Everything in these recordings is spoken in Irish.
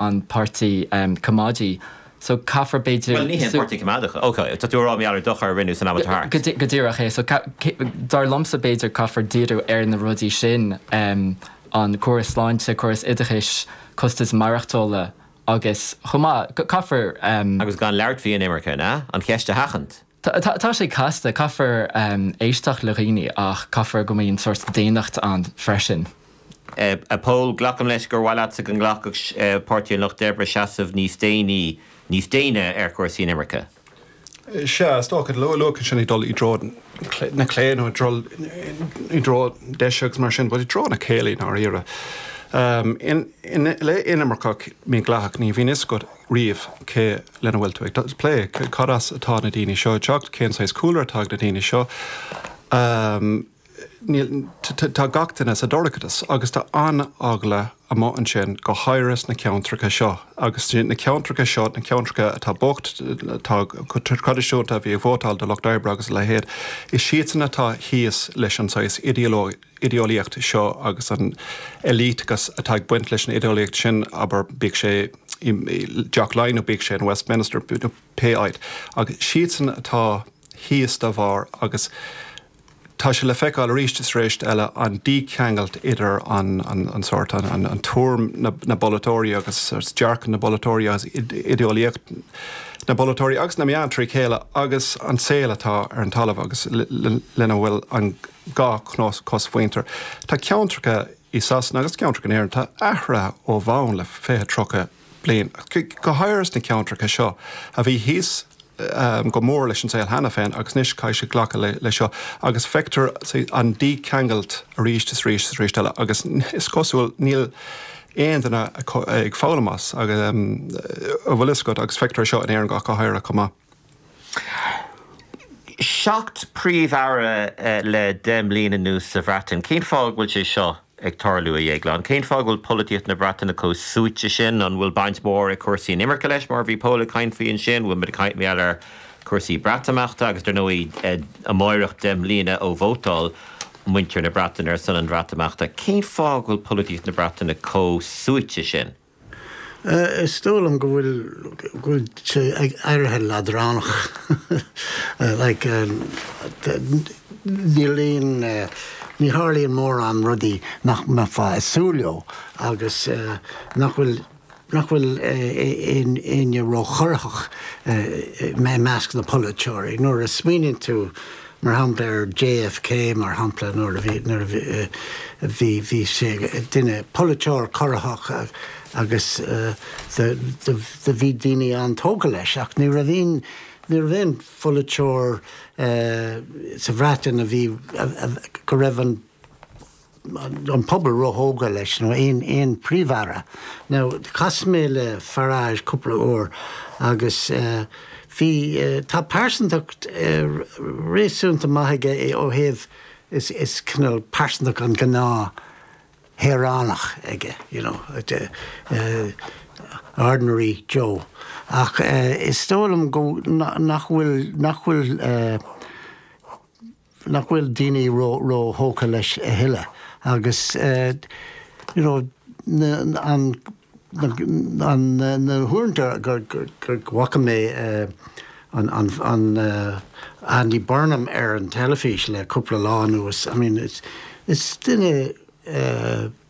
an páirtí coimeádach so caithfear b'fhéidir. Bhuel ní hé an páirtí coimeádach. Ok tá tú a rá mar gheall ar dochar a rinneadh san am atá thart. Go díreach é so dar liomsa b'fhéidir caithfear díriú ar na rudaí sin, an córas sláinte, córas oideachais, costas maireachtála agus chomh maith caithfear. Agus gan labhairt faoi an imirce, an ea? An cheist a sheachaint. Tá, tá, tá sé casta. Caithfear éisteacht le dhaoine ach caithfear go mbeadh sórt daonnacht ann freisin. A Phóil, glacaim leis gur mhaith leatsa go nglacfadh Páirtí an Lucht Oibre seasamh níos déine, níos déine ar chúrsaí inimirce? Sea, is dócha. Luaigh tú ansin ag dul i dtreo na clé nó ag dul i dtreo na deise agus mar sin, but i dtreo na céille i ndáiríre. Le hinimirce mhídhleathach, ní bhíonn fhios agat riamh cé lena bhfuil tú ag plé, cad as atá na daoine seo ag teacht, cén saghas cúlra atá ag na daoine seo. Tá gach duine sa dorchadas agus tá an-eagla amuigh ansin, go háirithe sna ceantracha seo agus na ceantracha seo na ceantracha atá bocht, atá go traidisiúnta a bhí ag vótáil do Lucht Oibre agus a leithéid, is siadsan atá thíos leis an saghas idé-eolaíocht seo agus an élíteachas atá ag baint leis an idé-eolaíocht sin abair bíodh sé i dTeach Laighean nó bíodh sé in Westminster nó pé áit agus is iadsan atá thíos dá bharr agus tá sé le feiceáil arís is arís eile an dícheangailt idir an an sórt an an tuairim na na bpolaiteoirí agus is dearcadh na bpolaiteoirí agus idé-eolaíocht na bpolaiteoirí agus na meáin trí chéile agus an saol atá ar an talamh agus lena bhfuil an gnáth-chosmhuintir. Tá ceantracha i Sasana agus ceantracha in Éirinn atá athraithe ó bhonn le fiche, tríocha bliain. Go háirithe sna ceantracha seo a bhí thíos go mór leis an saol cheana féin agus anois caithfidh siad glacadh le seo agus feictear an dícheangailt arís is arís is arís eile agus is cosúil níl aon duine ag foghlaim as, a bhfuil fhios agat, agus feictear seo in Éirinn ach go háirithe chomh maith. Seacht bPríomh-Aire le deich mbliana anuas sa Bhreatain. Cén fáth go bhfuil sé seo ag tarlú, a Dhéagláin? Cén fáth go bhfuil polaitíocht na Breataine chomh suaite sin? An bhfuil baint mhór ag cúrsaí inimirce leis, mar a bhí Pól ag caint faoi ansin? An bhfuil muid ag caint mar gheall ar chúrsaí Breatimeachta? Agus, dar ndóigh, amáireach deich mbliana ó vótáil muintir na Breataine ar son an Bhreatimeachta. Cén fáth go bhfuil polaitíocht na Breataine chomh suaite sin? Is dóigh liom go bhfuil go bhfuil sé ag éirí leadránach like ní ní tharlaíonn mórán rudaí nach mbeifeá ag súil leo agus nach bhfuil nach bhfuil éinne ró-chorraitheach i measc na bpolaiteoirí. Nuair a smaoiníonn tú mar shampla ar JFK mar shampla nuair a bhí nuair a bhí bhí bhí sé duine polaiteoir corraitheach agus the the the bhí daoine an-tógtha leis ach ní raibh aon ní raibh aon pholaiteoir sa Bhreatain a bhí go raibh an an pobal róthógtha leis nó aon Phríomh-Aire. Now chas mé le Farage cúpla uair agus bhí, tá pearsantacht réasúnta maith aige ó thaobh, is cineál pearsantacht an ghnáthshaoránach aige you know, ordinary Joe ach is dóigh liom go, nach bhfuil, nach bhfuil, nach bhfuil daoine róthógtha leis a thuilleadh agus you know na huaireanta go bhfaca mé an Andy Burnham ar an teilifís le cúpla lá anuas I mean is duine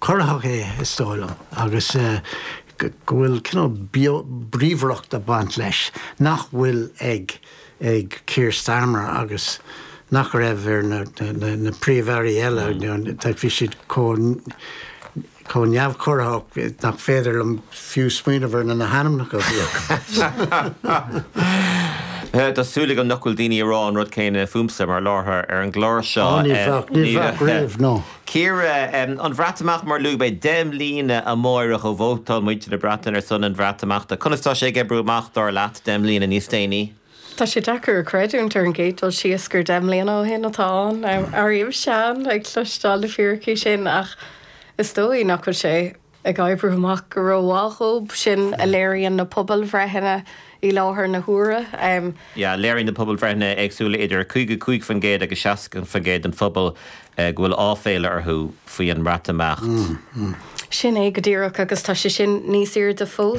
corraitheach é is dóigh liom agus go bhfuil cineál beo bríomhaireacht ag baint leis nach bhfuil ag Keir Starmer agus nach raibh ar na Príomh-Airí eile. Bhí siad chomh neamhchorraitheach nach féidir liom fiú smaoineamh ar na hainmneacha a bhí acu. Tá súil agam nach bhfuil daoine ag rá an rud céanna fúmsa mar láithreoir ar an gclár seo. Ní bheadh riamh, no. Ciara, an Breatimeacht, mar luaigh mé deich mbliana amárach ó vótáil muintir na Breataine ar son an Bhreatimeachta. Conas tá sé ag oibriú amach, dar leat, deich mbliana níos déanaí? Tá sé deacair a chreidiúint ar an gcéad dul síos gur deich mbliana ó shin atá ann. Airím sean ag cloisteáil le fíricí sin ach is dóigh nach bhfuil sé ag oibriú amach go rómhaith dhóibh sin a léiríonn na pobalbhreitheanna i láthair na huaire. yeah léiríonn na pobalbhreitheanna éagsúla idir 55% agus 60% den phobal go bhfuil áiféala orthu faoi an mBreatimeacht. Sin é go díreach agus tá sé sin níos airde fós.